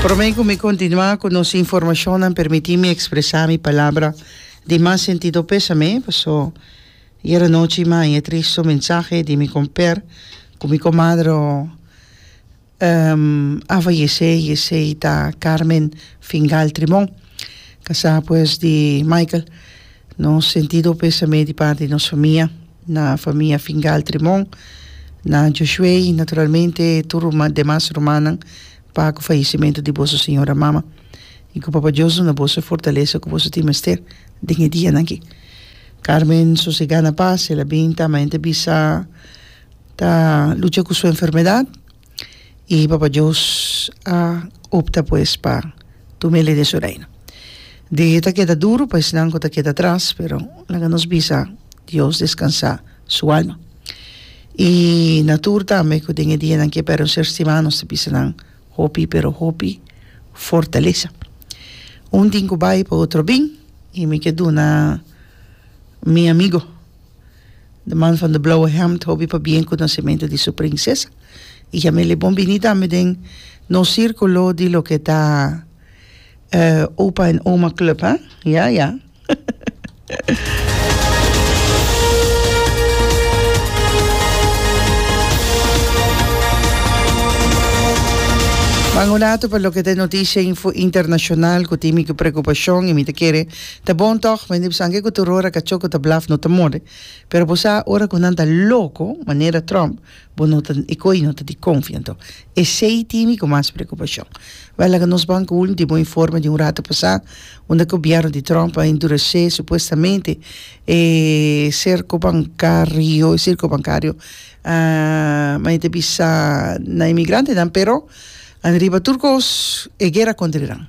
Prome cu mi continua cu nos informacionnan permiti mi expresa mi palabra di mas sentido pesame paso yera nochi maya triste un mensahe di mi comper cu mi comadre a fayece y esey ta Carmen Fingal Trimon casa pues di Michael nos sentido pesame di parti nos famia. Na famia Fingal Trimon, na Josué y naturalmente tur ruma demas rumannan pa cu fallecimento di boso señora mama y cu Papa Dios duna boso e fortalesa cu boso tin mester den e dianan aki. Carmen sosega na pas, el a bin ta ma e ta bisa ta lucha cu su enfermedad. I Papa Dios a opta pues pa tuma e ley den su reino. Di ta keda duru pa esnan ku ta keda atras, pero laga nos bisa Dios deskansa su alma. I na tur tambe ku den e dianan ke pèrdon ser stimá nos ta bisa nan hopi pero hopi fortalesa. Un tin ku bai pa otro bin i mi ke duna mi amigo. De man van de blauwe hemd hopi pabien ku nasimentu di su prinsesa i Jamile bon bini tambe den nos sirkulo di loke ta Opa en Oma Club a ya ya Pan un ratu pa loke ta e notisia internashonal ku timi ku prekupashon i mi ta kere Ta bon tog, mende bisan ke ku turor a kacho ku ta blaf no ta more, pero bo sa ora ku nan ta loko manera Trump bo no ta e koi no ta di konfi anto esei tin mi ku mas preokupashon. Bai laga nos ban ku ultimo informe di un ratu pasá unda gobièrnu di Trump a endurese supuestamente e serko bankario e sirko bankario ma e ta bisa na e migrantenan pero anriba tur kos e guera kontrinan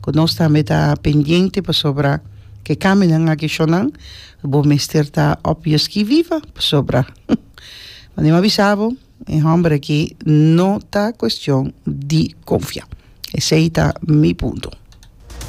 ku nos tambe ta pendiente pasobra ke kaminan aki shonan bo mester ta op yo ski viva pasobra wende mi a bisa bo e homber aki no ta cuestion di confia esey ta mi punto.